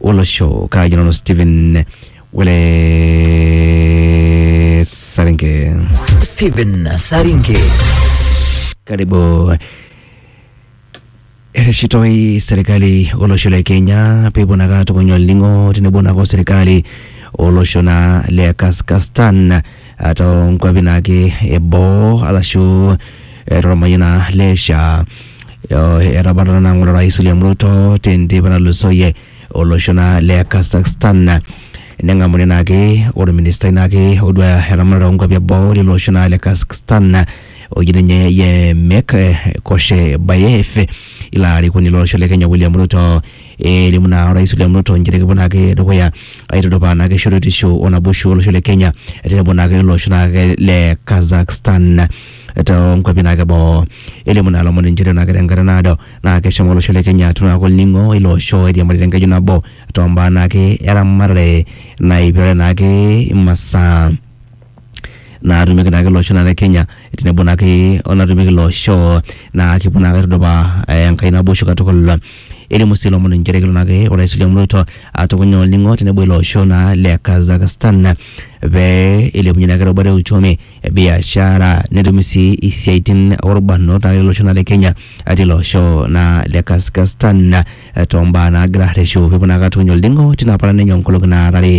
olosho kaaji nanu Stephen Wele Saringe. Stephen Saringe. Karibu ereshitoi serikali olosho le Kenya peepuo naa kaatukuny olning'o tenebo naake o serikali olosho naa le Kazakhstan eh, too nkuapi naake eboo arashu eh, tormayian naa le SHA. Eh, Etabatata naa ng'ole Rais William Ruto tenteipa natulusoyie olosho naa le Kazakhstan neng'amuni naake orministai naake oduaya eramatare oonkuapi eboo lilo osho naa le Kazakhstan oji ninye Yemek eh, Koshebayev ilo arikoni lolosho le Kenya William Ruto elimu naa orais William Ruto inchere kepuo naake dukuya aitudupaa naake shoruetisho o naboisho olosho le Kenya tenebo naake ilo osho naake le Kazakhstan toonkuapi naake boo. Elimu naa lomon inchere naake tenkata naado naa keshomo olosho le Kenya atum naake olning'o ilo osho oiriamari tenkeju nabo tombaa naake eramatare naipirare naake imasaa natumieki naake ele osho le Kenya tenebo naake onatumieki ilo osho naa kipuo naake aitudupaa enkae naboisho katukul. Elimu sii ilomon inchere kelo naake orais William Ruto atukuny olning'o tenebo ilo osho naa le Kazakhstan pee eilepunye naake erubata e uchumi, biashara netumi sii isiaitin orbanot naake ele osho le Kenya atii ilo osho naa le Kazakhstan. eh, too mbaa naagira arreshu peepuo naa katuny olding'o tina paran enye onkolong'i naara are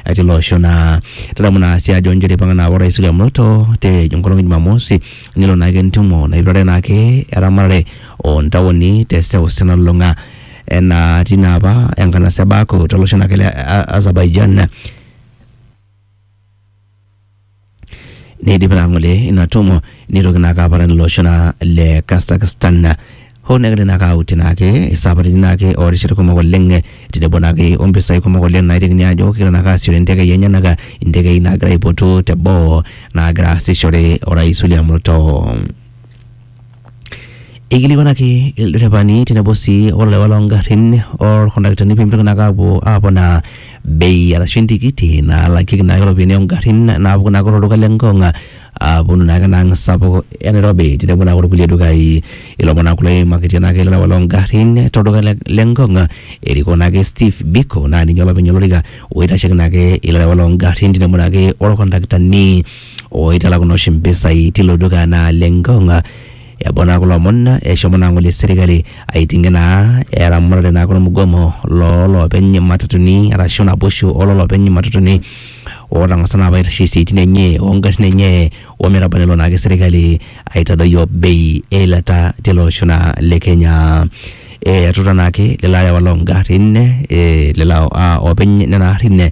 eh, tilo osho naa tadamu naa sii ajo njere eipang'a naa orais William Ruto te enkolong e Jumamosi nelo naake entumo naipirare naake eramatare ontaoni te seuseu nalulung'a enaa tina apa enkanasa e Baku tolosho naake le A- Azerbaijan neidip naa ng'ole ina tumo neitoki naake aparan ilo osho naa le Kazakhstan hoo negira naake auti naake isaparitin naake oorishat kumok oleng eh, tenebo naake ompisai kumok oleng naitekini aajo kegira naake aasiooyo intekei enyenak intekei naagira aipotu teboo naagira aasishore orais William Ruto. Eikilikwanaki ilderefani tenebo sii olewa loo ngarrin olkondaktani pee mitoki naa ake aapuo aponaa bei arashu entikiti nalakieki naa ake iropiyiani oo ngarrin naapuku naa ake to lduka le Ngong aaponu naa ake ena ang sapuk e Nairobi tenebo naa olkulie dukai. Ilomon naa kulo oimakitia naa ake ilewa loo ngarrin to lduka le Ngong erikoo naa ake Steve Biko naa ninye olopeny olorika oitasheiki naa ake ilewa loo ngarrin tenebo naa ake olkondaktani. oitalakuni oshi mpisai tilo duka naa le Ngong. Eboo naa kulo omon eshomo naa ng'ole serkali aiting'ie naa eramatare naa kulo mgomo loo loopeny matatuni arashu naboishu oo loopeny matatuni ootang'asa naa apa aitasheyie isiaitin enye oo ngarrin enye o metaba nelo naake serkali aitadoyio bei e ilata tele osho naa le Kenya. Etuta naake lelo arewak loo ngarrin, lelo oopeny nena arrin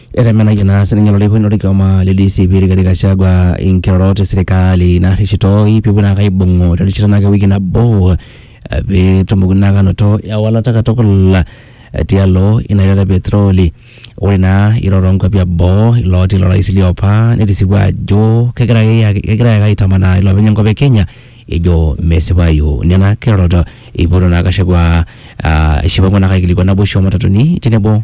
Etemenayie naa sininye olarikoni lorkioma le DCP Rigathi Gachagua inkirorot e serikali naarrishitoi peepuo naake aibung'u terishata naake ewiki nabo eh, peetumoki naake anoto ewalata katukul eh, tialo ina ilata e petroli. Ore naa irorot oonkuapi eboo ilooti ilo rais liopa netisipua ajo kegira ake ake- kegira ake aitamanaa iloopeny enkop e Kenya ejo mesipayu nena kirorot. Eipoto naa Gachagua ah, eshipaku naake aikilikuan naboisho oo matatuni tenebo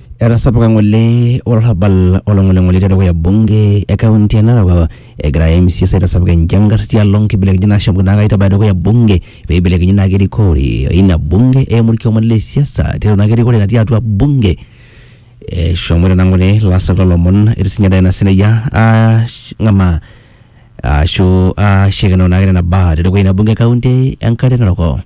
Etasapuka ng'ole olarrabal olong'oling'oli tedukuya bunge e kaunti e Narok egira MCAs aitasapuk enjangar tialo nkibelekenyat naashomoki naake aitabaya dukuya bunge pee eibelekenyi naake erikore ina bunge eimu orkioma le siasa tiatua naake erikore natii atua bunge. Eshomoita naa ng'ole ilaasak loo lomon etii siinye Diana Sirayya aang'amaa ashu ashikino naake nena baa te dukuya ina bunge e kaunti e Nkare Narok.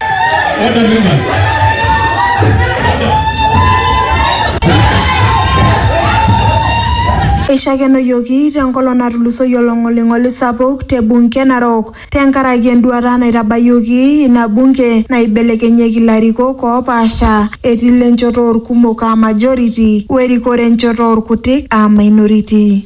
Eishakenoyioki tenkolong natulusoyie olong'oling'oli sapuk te bunge e Narok tenkaraki enduata naitabayioki ina bunge naibelekenyieki ilarikok oopaasha etii ile nchoto oolkumok aa majority o erikore enchoto oolkutik aa minority.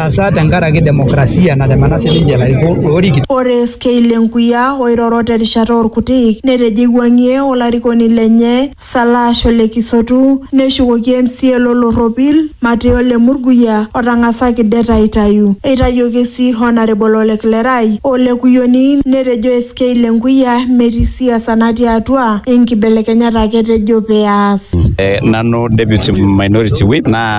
Asa tenkaraki demokrasia natemena sininche ilarikok oorikito. Ore FK Lenkuya oiroro terishata orkutik netejo eiwuangie olarikoni lenye Salash ole Kisotu neshukoki MCA lo Lorropil Mateo Lemurguya otangasaki det aitayu. Eitayioki sii Honarable Ole Klerai o Ole Kuyioni netejo SK Lenkuya metii siasa natii atua inkibelekenyat ake etejo pee eas. Nanu deputy minority whip naa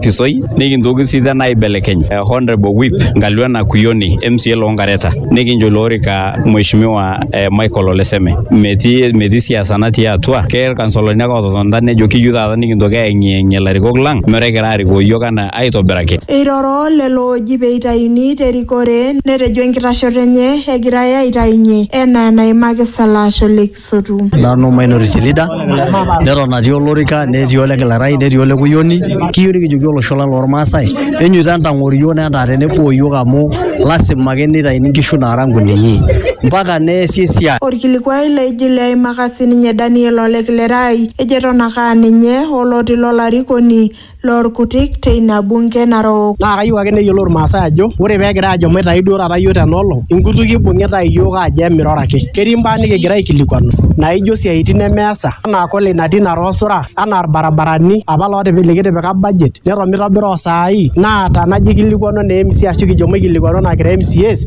pisoi nikintoki sii tena aibelekeny eh, Honorable Whip Ngalwana Kuyoni MCA loo Ngareta nikincho ilo orika Mheshimiwa eh, Michael Oleseme metii metii siasa natii atua ke irkansolani ake ototonita nejo kiyieu taata nikintoki aeng'ieng'ie ilarikok lang metaa egira arikoo iyiook anaa aitobiraki Eiroro lelo ooji pee eitayuni te rikore netejo enkitashoto enye egirai aitayunye enaa enaimaki Salasho Lakes. asotu. Nanu Minority Chilida, neton atii olorika netii ole Kilarai netii ole Kuyioni, kiyieu nikijoki olosho lang' lormaasai enyeita entang'oro iyiok netaa tenebo iyiok amu lazima ake nitaini nkishu naara nkunenye mpaka neesi esiai. Olkilikuai laigil eimaka sininye Daniel ole Kilerai ejo eton ake aa ninye oloti lo larikoni loo lkutik te ina bunke narok. Naa kayieu ake neyiolou ilmaasai ajo ore pee egirai aajo maitayu duo taata iyiook tena olong, inkutukie eibung'itae iyiook aajo emiroro ake. Ketii imbaa nikigira aikilikuanu naaijo isiaaitin nemeesa anaa kule natii ina too sura anaa ilbarabarani apa likitipika budget neton meitobira osaai naa tanajo eikilikuanu anaa mca ashuu kijo maikilikuanu anaa kira mcas.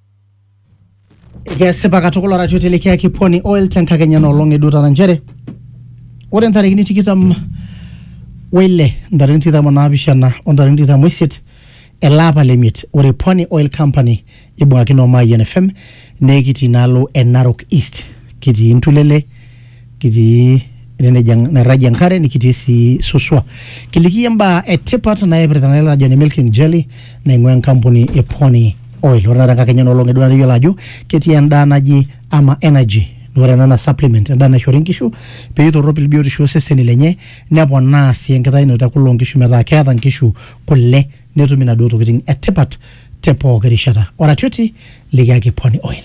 Kesipa katukul arashu itelekiaki Pwani Oil tenkakenya enoolong eduo taata nchere ore ntarikini tikitam weile ntarikini tikitam onaapishana o ntarikini tikitam oisiet ele apa le miet ore Pwani Oil Company ibung'akino o Mayian FM nekitii inaalo e Narok East kitii Ntulele kitii ene neji en- nairragie enkare nikitii sii suswa kiliki iyie imbaa etipat naipirta nai lajoni milk and jelly naing'ua enkampuni e pony oil ore taata enkakenya enoolong edua nikiyiolo ajo ketii endaa naji ama energy naa ore ena naa supplement endaa naishori inkishu peitorropil biotisho oseseni lenye neponaa sii enkitayunoto e kule onkishu metaa keeta inkishu kule netum inaduo tokiting etipat te pooki rishata oratioti likiyaki pony oil